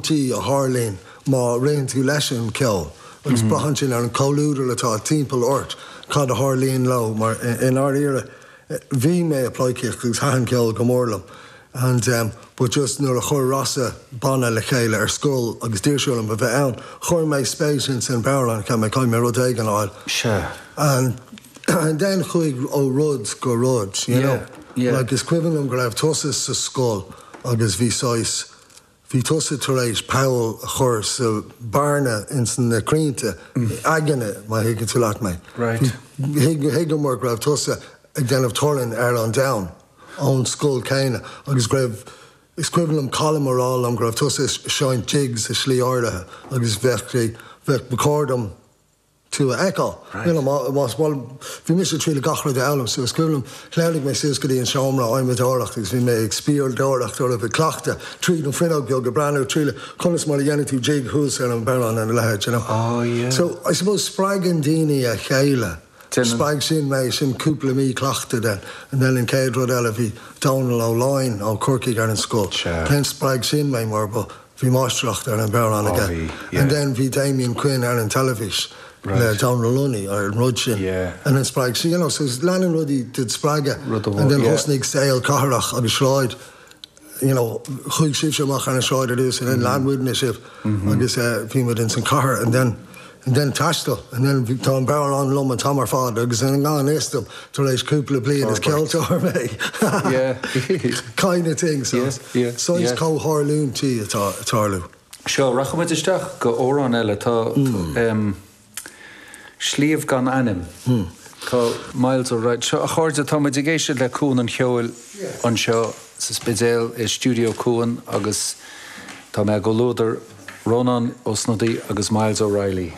tí a tharlaíonn má réitíonn tú leis an cheol agus braitheann sin ar an chomhluadar atá timpeall ort cad a tharlaíonn leo mar i ndáiríre bhí mé ag pleidhcíocht agus thaitin ceol go mór liom and em but just nuair a chuir Rossa banna le chéile ar scoil agus d'iarr sé orm a bheith ann chuir mé spéis insan amhráin cheap mé caithfidh mé rud éigin a fháil sure and and then chuaigh ó rud go rud you yeah know yeah like is cuimhin liom go raibh tusa sa scoil agus bhí saghas Bhí tusa tar éis poll a chur sa bearna ins na crainnte aigne, má thuigeann tú leat mé. Thuigeamar go raibh tusa ag déanamh torainn ar an domhan ón scoil céanna agus go raibh, is cuimhin liom Colm ag rá liom go raibh tusa ag seinnt jigs i slí áirithe agus bheadh, bheadh, ba chóir dom tú a fheiceáil. Níl am agam, más mall. Bhí mise ag triail gach rud a fhoghlaim suas. Is cuimhin liom, shleamhnaigh mé suas go dtí an seomra adhmadóireachta agus bhí mé ag spiaireacht oraibh, ag cleachtadh tríd an fuinneog beag, ag breathnú trí conas mar a dhéanann tú jig thuas ar an bodhrán ar a leithéid, you know. So, I suppose spreagann daoine a chéile. Spreag sin mé, sin cúpla mí cleachtaidh then. And then an chéad rud eile, bhí Dónal Ó Lioin ó Chorcaigh ar an scoil. Then spreag sin mé mar ba. Bhí máistreacht ar an bodhrán aige and then bhí Damien Quinn ar an teilifís le Dónal Lunny ar an rud sin and then spreag sé, you know, so leanann rudaí dod spreagadh and then thosnaigh saol cathrach agus sráid, you know, chuaigh sibhse amach ar an sráid ar dtús and then lean muidne sibh agus bhí muid ins an chathair and then, And then taisteal and then tá an bodhrán liom an t-am ar fad agus i ngan fhios dom tar éis cúpla bliain is ceoltóir mé, kind of thing, saghas comhtharlúintí atá ag tarlú. Seo, rachaidh muid isteach go amhrán eile. Tá Sliabh gan Ainm. Tá Myles O'Reilly. Seo, a chairde, tá muid ag éisteacht le Cuan an Cheoil anseo sa Spidéal i Stiúideo Cuan agus tá mé i gcomhluadar Rónán Ó Snodaigh agus Myles O'Reilly.